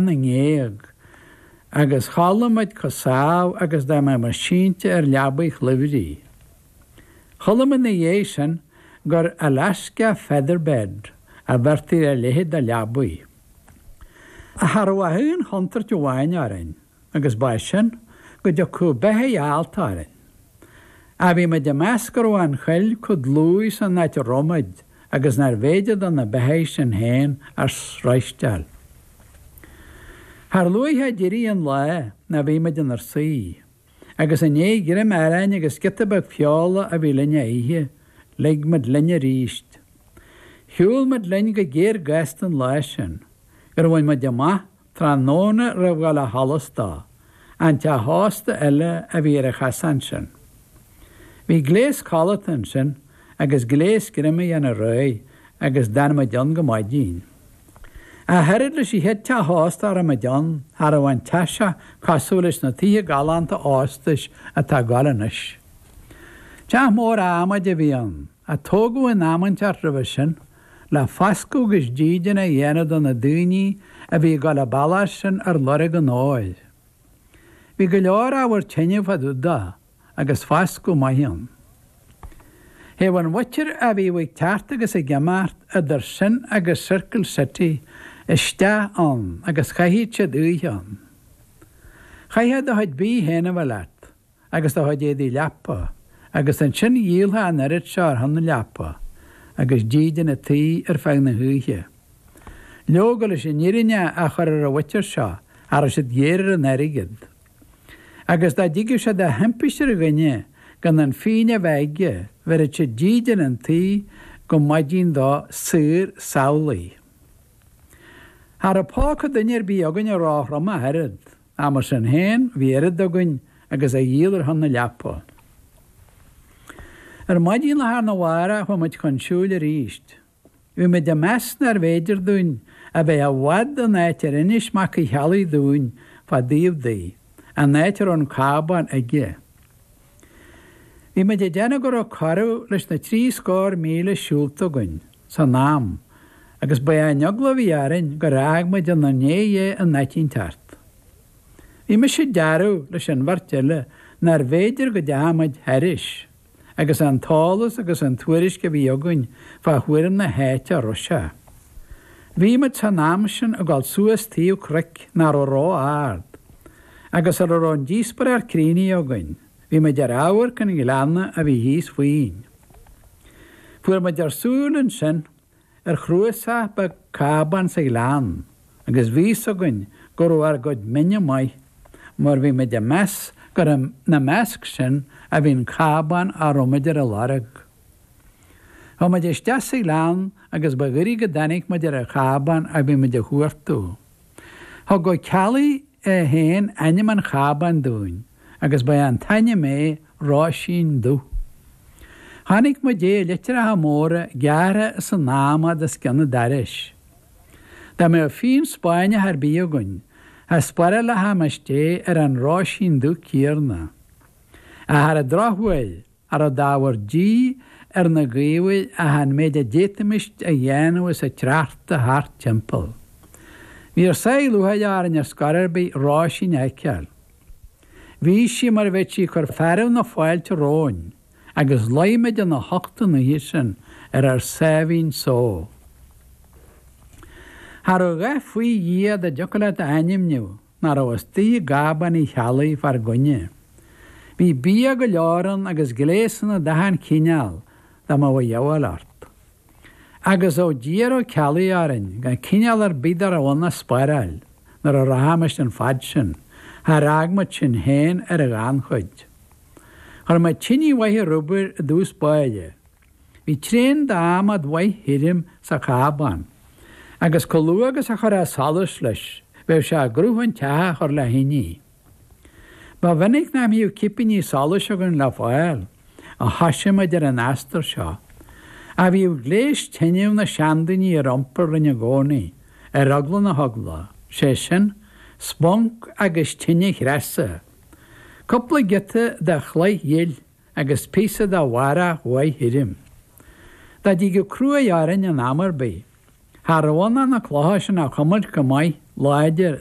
na ngéag, agus chodlaigh muid comh sámh agus dá mbeimis sínte ar leabaidh chluimhrí. Chuala mé 'na dhéidh sin gur 'Alaska feather bed' a bheirtí ar a leithéid de leabaidh. Ach cha rabh ach aon chontúirt amháin orainn. agus ba é sin, go dtiocfadh beithígh allta orainn. Ach bhí muid ag meas go raibh an choill comh dlúith san áit a raibh muid agus nárbh fhéidir do na beithígh sin féin ár sroisteáil. Char luaithe a d'éirigh an lá ná bhí muid inar suí, agus i ndiaidh greim aráin agus giota beag feola a bhí linn a ithe, lig muid linn arís. Shiúil muid linn go géar gasta an lá sin, gur bhain muid amach Tráthnóna roimh dhul ó sholas dó, an teach sosta eile a bhí ar an chasán sin. Bhí gléas codlata ansin agus gléas greim a dhéanamh réidh agus d'fhan muid ann go maidin. Ach oiread leis an chéad teach sosta a raibh muid ann, cha raibh an teach seo cosúil leis na tithe galánta óstais atá ag gabháil anois. Teach mór adhmaid a bhí ann. a tógadh in am inteacht roimhe sin, le fascadh agus dídean a dhéanamh do na daoine a bhí ag dul an bealach sin ar lorg an óir. Bhí go leor ábhar tine fá dtaobh de, agus fascadh maith ann. Théadh an mhuintir a bhíodh ag teacht agus ag imeacht idir sin agus Circle City isteach ann agus chaitheadh siad oíche ann. Chaithfeá do chuid bídh féin a bheith leat. agus do chuid éadaí leapa, agus ansin dhíolfá an oiread seo ar shon na leapa agus dídean an tí ar feadh na hoíche. Leoga, leis an fhírinne a chur ar an mhuintir seo, cha rabh siad géar ar an airgead. Agus dá dtigeadh sé de thimpiste ar dhuine gan an phingin a bheith aige, bheireadh siad dídean an tí go maidin dó saor samhlaidh. Cha rabh póca duine ar bith againne róthrom ach oiread. Ach mar sin féin, bhí oiread againn agus a dhíol ar shon na leapa. Ar maidin lá arna mhárach chuaigh muid chun siúil arís. Bhí muid ag meas nárbh fhéidir dúinn a bheith i bhfad ón áit ar inis Mac Uí Cheallaigh dúinn fá dtaobh di, an áit a raibh an cábán aige. Bhí muid ag déanamh go raibh corradh leis na trí scór míle siúlta againn san am agus ba é an eagla a bhí orainn gur fhág muid inár ndiaidh é in áit inteacht. Bhí mise ag dearbhú leis an bheirt eile nárbh fhéidir go dteachaidh muid thairis agus an t-eolas agus an tuairisc a bhí againn fá thuairim na háite a raibh sé. Bhí muid san am sin ag dul suas taobh cnoic nach raibh ró-ard, agus sar a raibh an díospóireacht críochnaithe againn, bhí muid ar amharc an ghleanna a bhí thíos fúinn. Fuair muid ár súil ansin ar chnuasach beag cábán sa ghleann agus bhí fhios againn go raibh ár gcuid mine amuigh, mar bhí muid ag meas gur ina measc sin a bhí an cábán a raibh muid ar a lorg. Chuaigh muid isteach sa ghleann agus ba ghoirid go dtáinig muid ar an chábán a bhí muid a chuartú. Thug Ó Ceallaigh é féin ainm an chábáin dúinn agus ba é an t-ainm é Róisín Dubh. Chonaic muid é i litreacha móra gearrtha san adhmad os cionn an dorais. Dá mbeadh fíon Spáinneach ar bith againn, cha spárálfaimis é ar an Róisín Dubh céarna. Ach ar an drochuair, cha raibh d'ábhar dí ar na gaobhair ach an méid a d'fhéadfaimist a dhéanamh as an tsneachta thart timpeall. Bhí ár sáith lúcháire orainn ar scor ar bith Róisín a fheiceáil. Bhí sí mar a bheadh sí ag cur fearadh na fáilte romhainn agus luigh muid ina hucht an oíche sin ar ár sáimhín só. Cha raibh a dhath faoi Dhia dá dtiocfadh leat a ainmniú! nach raibh istigh i gcábán Uí Cheallaigh fár gcoinne. Bhí bia go leor ann agus gléasanna d'achan chineál dá mbeadh a dhíobháil ort. Agus ó d'iarr Ó Ceallaigh orainn gan cineál ar bith dá raibh ann a spáráil nuair a rachaimis an fad sin, char fhág muid sinn féin ar an ghannchuid. Chuir muid tinidh mhaith ar obair i dtús báire, Bhí tréan d'adhmad mhaith thirim sa chábán, agus chomh luath agus a chuirfeá solas leis, bheadh sé i gcruth an teach a chur le thinidh. Ba mhinic nach mbíodh cipíní solais againn le fáil, ó thoisigh muid ar an astar seo, ach bhíodh gléas tineadh na seandaoine ar iompar linn i gcónaí, ar eagla na heagla, sé sin, sponc agus tine chreasa. Cupla giota de chloich ghil. agus píosa de bharrach mhaith thirim. Dá dtigeadh cruaidh orainn in am ar bith, cha rabh ann ach na clocha sin a chuimilt go maith láidir